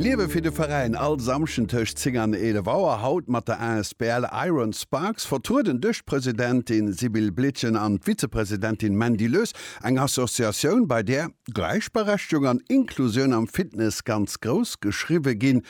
Liewe fir de Veräin, all Samschden tëscht 10 an 11 Auer, haut mat der asbl Iron Sparks, vertrueden duerch d'Presidentin Sibylle Blietgen an d'Vizepresidentin Mandy Lös, eng Associatioun, bei där Gläichberechtigung an Inklusioun am Fitness ganz grouss geschriwwe ginn.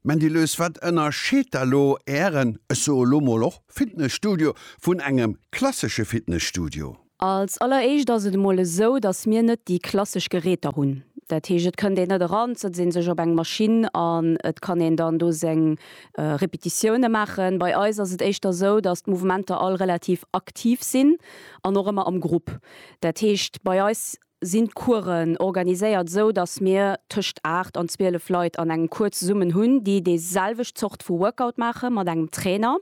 Mandy Lös, wat ënnerscheet da lo Ären, ech soe lo mol och Fitnesstudio vun engem klassesche Fitnesstudio? Als alleréischt ass et emol esou, datt mir net déi klassesch Geräter hunn. Dat heescht, et kënnt een net eran, et setzt ee sech op eng Maschinn an et kann een dann do seng Repetitioune maachen. Bei eis ass et éischter esou, datt d'Mouvementer all relativ aktiv sinn an och ëmmer am Grupp. Dat heescht, bei eis sinn d'Coursen organiséiert esou, datt mir tëscht 8 an 12 Leit an engem Cours zesummen hunn, déi déi selwecht Zort vu Workout maache mat engem Trainer.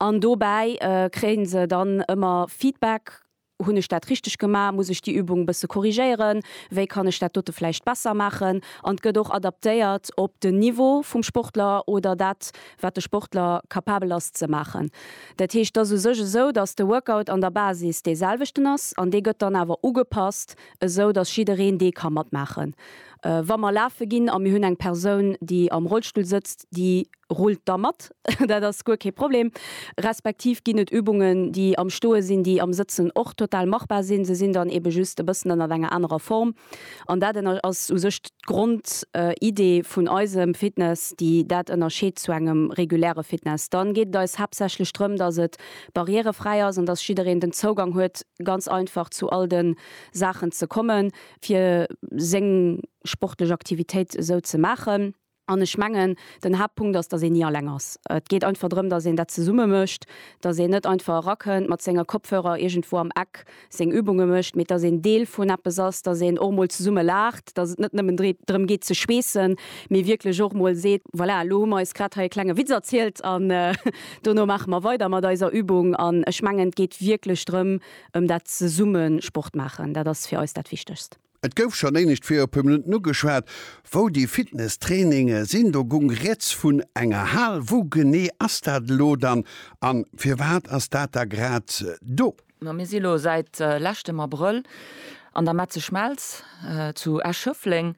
An dobäi kréie se dann ëmmer Feedback, hunn ech dat richteg gemaach, muss ech déi Übung e bësse korrigéieren, wéi kann ech dat dote vläicht besser maachen? An et gëtt och adaptéiert op den Niveau vum Sportler oder dat wat de Sportler capabel ass ze maachen. Dat heescht, et ass u sech esou, datt de Workout an der Basis dee selwechten ass an dee gëtt dann awer ugepasst, esou datt jiddereen dee ka matmaachen. Wa mer lafe ginn a mir hunn eng Persoun, déi am Rollstull sëtzt, déi rullt da mat, dat ass guer kee Problem, respektiv ginn et Übungen, déi am Stoe sinn, déi am Sëtzen och total machbar sinn, se sinn dann eebe just e bëssen ënnert enger anerer Form. An dat ënner ass u sech d'Grondidee vun eisem Fitness, déi dat ënnerscheet zu engem reguläre Fitness. Dann geet et eis haaptsächlech drëm, dass et barrièrefräi ass an dass jiddereen den Zougang huet, ganz einfach zu all de Saachen ze kommen, fir seng sportlech Aktivitéit esou ze maachen. An ech mengen, den Haaptpunkt ass, datt een ni alleng ass. Et geet einfach drëm, datt een dat zesumme mécht, datt een net einfach erakënnt, mat senge Kopfhörer iergendwou am Eck seng Übunge mécht, mee datt een Deel vun eppes ass, datt een och emol zesumme laacht, datt et net nëmmen drëm geet ze schweessen, mee wierklech och mol seet, voilà, elo hu mer eis grad hei e klenge Witz erzielt an dono maache mer weider mat eiser Übung. An ech mengen, et geet wierklech drëm, ëm dat zesumme Sport maachen, dat ass fir eis dat Wichtegst. Et gouf schon éinescht fir e puer Minutten ugeschwat, wou déi Fitnesstraininge sinn. Do gung riets vun enger Hal. Wou genee ass dat elo dann an firwat ass dat da grad do? Ma mir si elo säit leschtem Abrëll an der Metzeschmelz zu Esch-Schëffleng.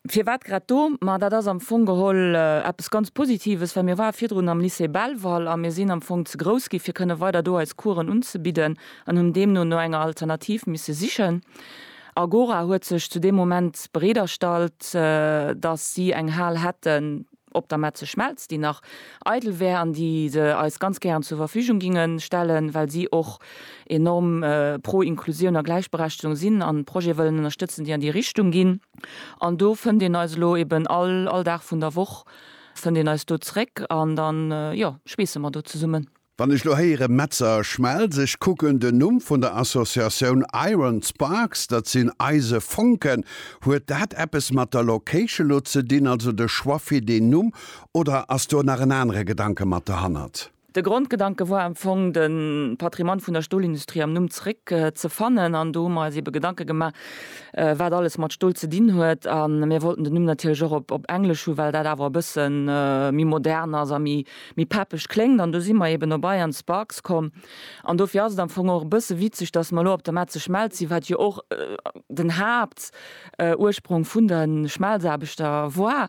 Firwat grad do? Ma dat ass am Fong geholl eppes ganz Positives, well mir ware virdrun am Lycée Belval a mir sinn am Fong ze grouss gi fir kënne weider do eis Coursen unzebidden an hunn deemno no enger Alternativ misse sichen. Agora huet sech zu deem Moment bereet erstallt, datt si eng Hal hätten, Op der Metze Schmelz, déi nach eidel wär an déi se eis ganz gären zur Verfügung ginge stellen, well si och enorm pro Inklusioun a Gläichberechtegung sinn an Projete wëllen ënnerstëtzen, déi an déi Richtung ginn. An do fënnt een eis elo eben all, all Dag vun der Woch fënnt een eis do zréck an da jo schweesse mer do zesummen. Wann ech lo héieren Metzer a Schmelz, ech kucken den Numm vun der Associatioun Iron Sparks, dat sinn Eise Fonken, huet dat eppes mat der Location lo ze dinn, also de Choix fir deen Numm, oder ass do nach en anere Gedanke mat derhannert? De Grondgedanke war am Fong, de Patrimoine vun der Stolindustrie am Numm zeréck ze fannen, an do hu mer eis eebe Gedanke gemaach, wat alles mat Stol ze dinn huet, a mir wollten den Numm natierlech och op Englesch hu well dat awer e bësse méi modern ass a méi méi peppeg kléngt an do si mer eben op Iron Sparks komm an dofir ass et am Fong och e bësse witzeg, dass mer elo op der Metze Schmelz si wat jo och den Haaptursprong vun de Schmelzaarbechter war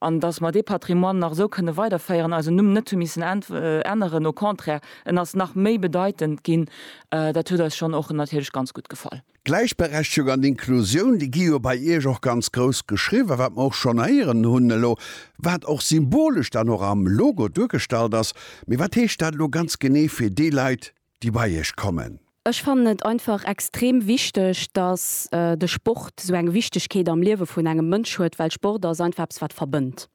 an dass mer dee Patrimoine nach esou kënne weiderféieren, eisen Numm net hu missen änneren, au contraire en ass nach méi bedeitend ginn, dat huet eis schonn och natierlech ganz gutt gefall. D'Gläichberechtegung an d'Inklusioun, déi gi jo bei Iech och ganz grouss geschriwwen, wat mer och schonn héieren hunn elo, wat och symbolesch dann och am Logo duergestallt ass. Mee wat heescht dat elo ganz genee fir déi Leit, déi bei Iech kommen? Ech fannen et einfach extrem wichteg, dass de Sport esou eng Wichtegkeet am Liewe vun engem Mënsch huet, well Sport ass einfach eppes, wat verbënnt.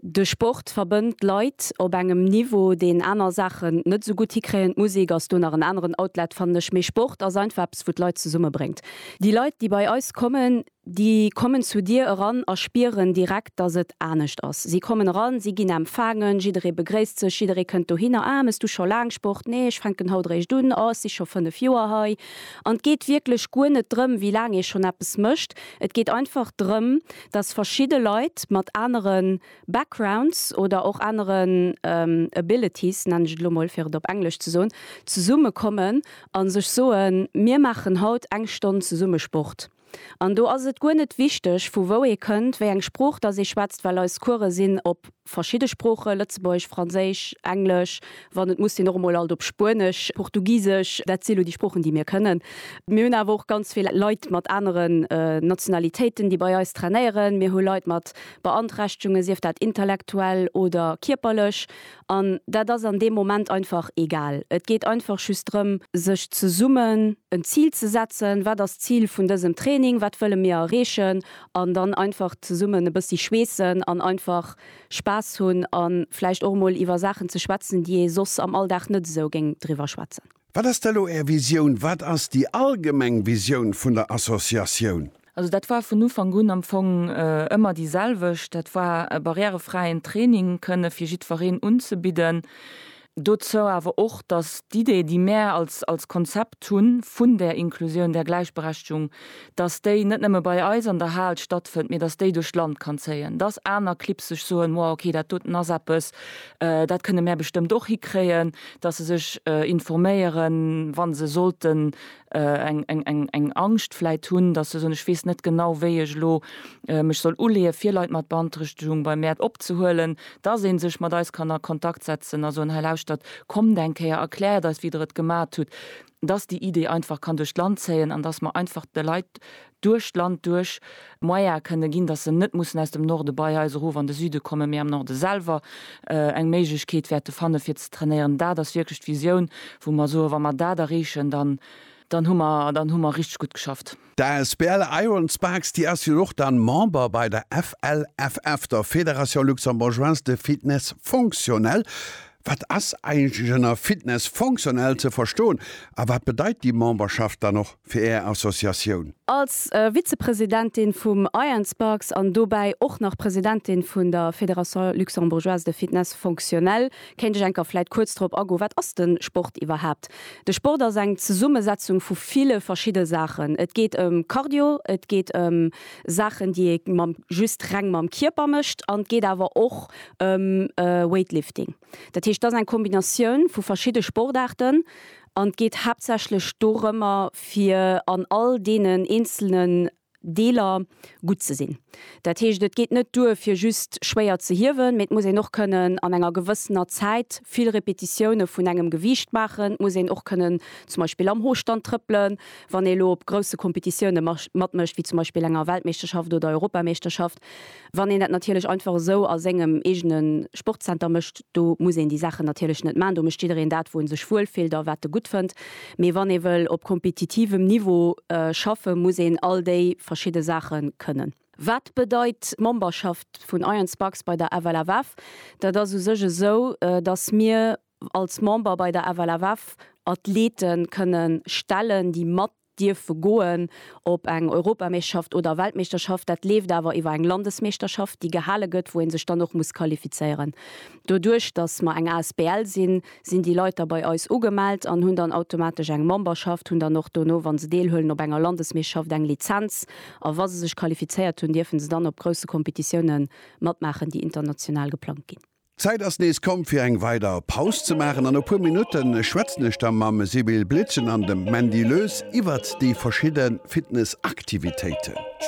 De Sport verbënnt d'Leit op engem Niveau, deen aner Saachen net esou gutt hikréien. D'Musek ass do nach en aneren Outlet, fannen ech, mee Sport ass einfach eppes, wou d'Leit zesummebréngt. Déi Leit, déi bei eis kommen, déi kommen zu dir eran a spieren direkt, dass et anescht ass. Si kommen eran, si ginn empfaangen, jidderee begréisst sech, jidderee kënnt dohinner, Ah, méchs du scho laang Sport? Nee, ech fänken haut eréischt un. Oh, ech si scho fënnef Joer hei. An et geet wierklech guer net drëm, wéi laang ee schonn eppes mécht, et geet einfach drëm, dass verschidde Leit mat anere Backgrounds oder och aneren Abilities, nennen ech et elo mol, fir et op Englesch ze soen, zesumme kommen a sech soen, Mir maachen haut eng Stonn zesumme Sport. An do ass et guer net wichteg, vu wou ee kënnt, wéi eng Sprooch dass ee schwätzt, well eis Course sinn op. Verschidde Sproochen, Lëtzebuergesch, Franséisch, Englesch, wann et muss sinn och emol alt op Spuenesch, Portugisesch, dat si lo déi Sproochen, déi mir kënnen. Mir hunn awer och ganz vill Leit mat aneren Nationalitéiten, déi bei eis trainéieren. Mir hu Leit mat Beanträchtegungen, sief dat intellektuell oder kierperlech. An dat ass an deem Moment einfach egal. Et geet einfach just drëm, sech zesummen en Zil ze setzen, Wat ass d'Zil vun dësem Training? Wat wëlle mir erreechen? an dann einfach zesummen e bëssi schweessen an einfach Spaass hunn a vläicht och emol iwwer Saachen ze schwätzen, déi ee soss am Alldag net esou géing driwwer schwätzen. Wat ass da elo Är Visioun? Wat ass déi allgemeng Visioun vun der Associatioun? Also dat war vun Ufank un am Fong ëmmer déi selwecht. Dat war e barrièrefräien Training kënne fir jiddwereen unzebidden. dozou awer och, dass d'Idee, déi mär als, als Konzept hu vun där Inklusioun, där Gläichberechtigung, dass déi net nëmme bei eis an der Hal stattfënnt, mee dass déi duerch d'Land kann zéien, dass aner Clibb sech soen, wow, okay, dat doten ass eppes, dat kënne mär bestëmmt och hikréien, dass se sech informéieren, wa se sollten eng Angscht vläit hunn, datt se soen, ech weess net genau, wéi ech elo mech soll uleeë fir Leit mat Beanträchtegung bei mär opzehuelen, datt ee sech mat eis kann a Kontakt setzen a soen, hei lauschtert, kommt eng Kéier, erkläert eis wéi der et gemat hutt, datt déi Idee einfach kann duerch d'Land zéien an datt mer einfach de Leit duerch d'Land duerch Moyen kënne ginn, datt se net mussen aus dem Norde bei eis erof an de Süde kommen, mee am Norde selwer eng Méiglechkeet wäerte fanne fir ze trainéieren. Dat ass wierklech d'Visioun, wou mer soen, wa mer dat erreechen, dann hu mer, dann hu mer richteg gutt geschafft. D'asbl Iron Sparks, déi ass jo och da Member bei der FLFF, der Fédération Luxembourgeoise de Fitness Fonctionnel. Wat ass eigentlech ënner Fitness fonctionnel ze verstoen a wat bedeit déi Memberschaft dann och? fir Är Associatioun. Als Vizepresidentin vum IANSPARKS an dobäi och nach Presidentin vun der Fédération Luxembourgeoise de Fitness Fonctionnel kéint ech enker vläit kuerz drop agoen, wat ass de Sport iwwerhaapt? De Sport ass eng Zesummesetzung vu ville verschidde Saachen. Et geet ëm Cardio, et geet ëm Saachen, déi ee mam, just reng mam Kierper mécht an et geet awer och ëm Weightlifting. Dat heescht, et ass eng Kombinatioun vu verschidde Sportaarten An et geet haaptsächlech dorëmmer, fir an all deenen eenzelnen Deeler gutt ze sinn. Dat heescht, et geet net duer, fir just schwéier ze hiewen, mee et muss een och kënnen an enger gewëssener Zäit vill Repetitioune vun engem Gewiicht maachen. Et muss een och kënnen zum Beispill am Hostand trëppelen, wann ee lo op grousse Competitioune matmécht, wéi zum Beispill enger Weltmeeschterschaft oder Europameeschterschaft. Wann een dat natierlech einfach esou a sengem eegene Sportzenter mécht, do muss een déi Saachen natierlech net maachen. Do mécht jiddereen dat, wou e sech wuel fillt a wat e gutt fënnt. Mee wann ee wëll op kompetitivem Niveau schaffen, muss een all déi verschidde Saache kënnen. Wat bedeit d'Memberschaft vun Iron Sparks bei der FLFF? Dat ass u sech esou, dass mir als Member bei der FLFF Athlete kënnen stellen, déi mat dierfe goen op eng Europameeschterschaft oder Weltmeeschterschaft. Dat leeft awer iwwer eng Landesmeeschterschaft, déi gehale gëtt, wou ee sech dann och muss qualifizéieren. Doduerch, datt mer eng asbl sinn, sinn déi Leit da bei eis ugemellt an hunn dann automatesch eng Memberschaft, hunn dann och dono, wa se deelhuelen op enger Landesmeeschterschaft, eng Lizenz a wa se sech qualifizéiert hunn, dierfe se dann op grousse Competitiounen matmaachen, déi international geplangt ginn. D'Zäit ass nees komm fir eng weider Paus ze maachen an no puer Minutte schwätzen ech da mam Sibylle Blitzen an dem Mandy Loes iwwert déi verschidde Fitnessaktivitéiten.